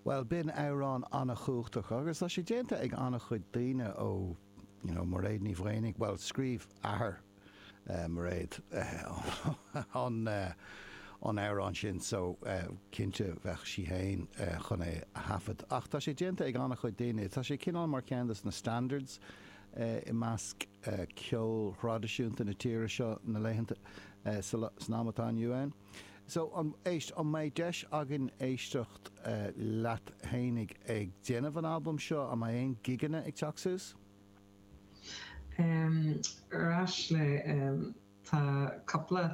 Bhuel, b'in amhrán an-chumhachtach agus tá sé déanta ag an-chuid daoine ó, you know, Mairéad Ní Mhaonaigh, bhuel, scríobh athair Mhairéad an, an t-amhrán sin so cinnte bheadh sí fhéin chun é a thaifeadadh. Ach tá sé déanta ag an-chuid daoine, tá sé cineál mar cheann dos na standards i measc ceol thraidisiúnta na tíre seo na laethanta, san am atá inniu ann. So, an, éist, an mbeidh deis againn éisteacht leat fhéinig ag déanamh an albaim seo? An mbeidh aon gigeanna ag teacht suas? Ar ndóigh, tá cúpla,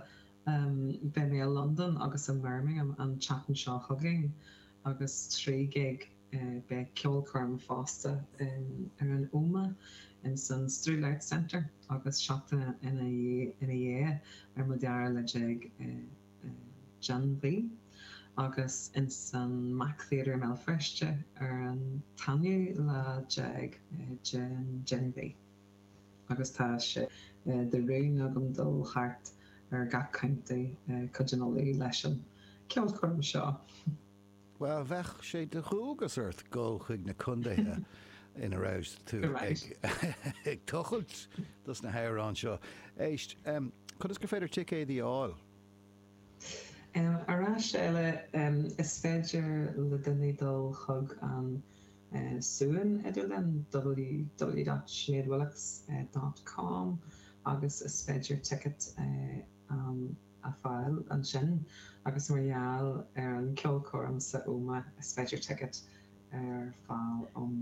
beidh mé i Londain agus i mBirmingham an tseachtain seo chugainn agus trí gig. Beidh ceolchoirm fosta ar an Óma ins an Strule Arts Centre agus seachtain ina dhiaidh ar an dara lá déag den mhí agus ins an MAC Theatre i mBéal Feirste ar an aonú lá déag den mhí. Agus tá sé de rún agam dul thart ar gach contae i gcúige Uladh leis an cheolchoirm seo. Bhuel, bheadh sé de dhualgas ort dhul chuig na contaetha ina raibh tú ag tochailt dos na hamhráin seo. Éist, conas gur féidir ticéid a fháil? Ar ais eile, is féidir le daoine dul chuig an suíomh idirlín, ww.sineadwillox.com agus is féidir ticket a. a fháil ansin agus mar gheall ar an cheolchoirm san Ómaigh is féidir ticket a fháil ón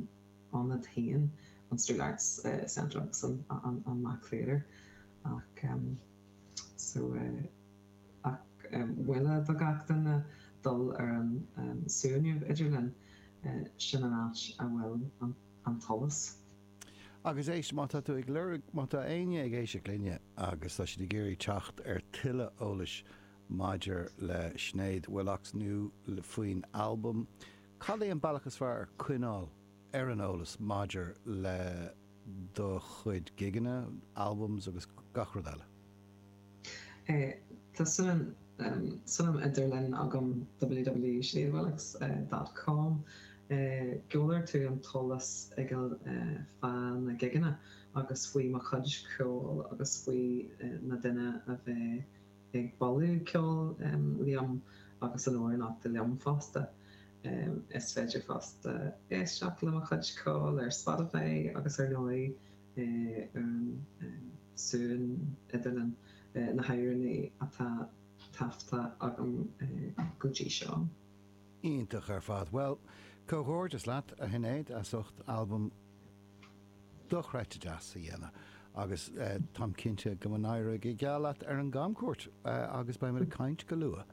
ionad féin, an Strule Arts Centre agus an Mac Theatre ach so ach mholfainn do gach duine dul ar an suíomh idirlín, sin an áit a bhfuil an t-eolas. Agus éist, má tá tú ag lorg, má tá éinne ag éisteacht linne agus tá siad ag iarraidh teacht ar thuilleadh eolais maidir le Sinéad Willox nó faoin albam, cad é an bealach is fearr ar choinneáil ar an eolas maidir le do chuid gigeanna, albums agus gach rud eile? Tá suíomh idirlín agam www.sineadwillox.com Gheobhaidh tú an t-eolas uilig fá na gigeanna agus faoi mo chuid ceoil agus faoi na daoine a bheidh ag bualadh ceoil liom agus an amhránaíocht liom fosta. Is féidir fosta éisteacht le mo chuid ceoil ar Spotify agus ar ndóigh Éireann, suan idirlinn na hÉireannaí atá taifeadta agam go dtí seo. Iontach ar fad. Bhuel, comhghairdeas leat, a Shinéad, as ucht albam dochreidte deas a dhéanamh agus táim cinnte go n-éireoidh go geal leat ar an gcamchuairt agus beimid ag caint go luath.